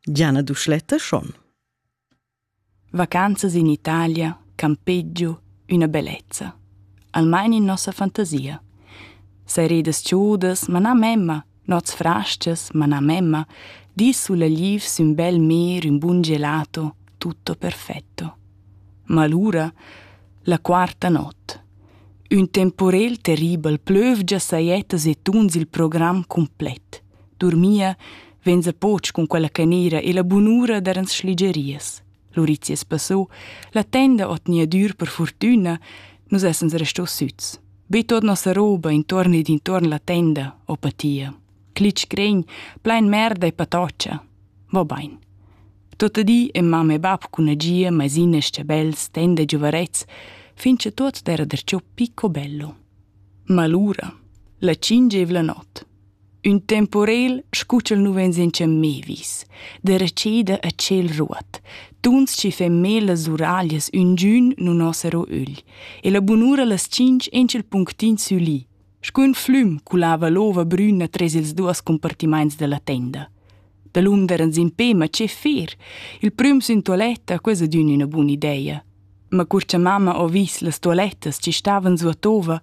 Gianna Duschletta schon. Vacanzas in Italia, campeggio, üna bellezza. Almain in nossa fantasia. Seredas ciudas, ma na memma, nots frastas, ma na memma, di sulla liv sün bel mer un bun gelato, tutto perfetto. Ma allura, la quarta not. Un temporel terribel plövgia sajettas e tuns il program complet. Durmia venza poch cun quella canera e la bunura dar ans schligerias. Lurizias passò, la tenda ot nia dür per fortüna, nus essens restò süts. Be tot nossa roba intorn ed intorn la tenda, o patia. Clic cregn, plein merda e patoccia. Va bain. Tota di e mamma e bab cun agia, maisines, chabels, tenda e giuvarets, fin che tot era der ciò picco bello. Ma lura, la cingevla not, Ün temporel scu ch'el nu vegn sencha mê vis, derecheda a tschel ruot, tuns chi fan mê las uraglias üngün nun ho saro ögl, e la bunura las tschinch in ch'il punctin sülì, scu ün flüm culava l'ova brüna tres ils duos compartimaints da la tenda. Dalun derans impè, ma che fer? Il prüm sün tualetta, quesa d'ün üna bun'ideia. ma cur cha mamma ho vis las tualettas chi stavan suotova,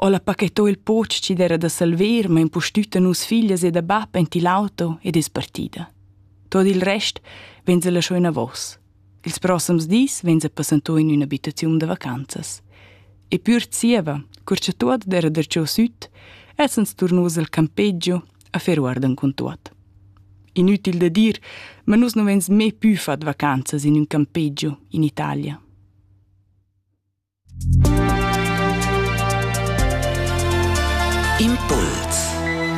ho la pachettà il poch chi d'eira da salver ma impustüt a nus figlias e da bap aint il auto ed es partida. Tuot il rest vainsa lascià inavos. Ils prossems dis vainsa passantà in ün'abitaziun da vacanzas. E pür zieva, cur cha tuot d'eira darcheu süt, essans turnos al campeggio affar guardan cun tuot. Inütil da dir, ma nus nu vegns mê pü fat vacanzas in ün campeggio in Italia. Impuls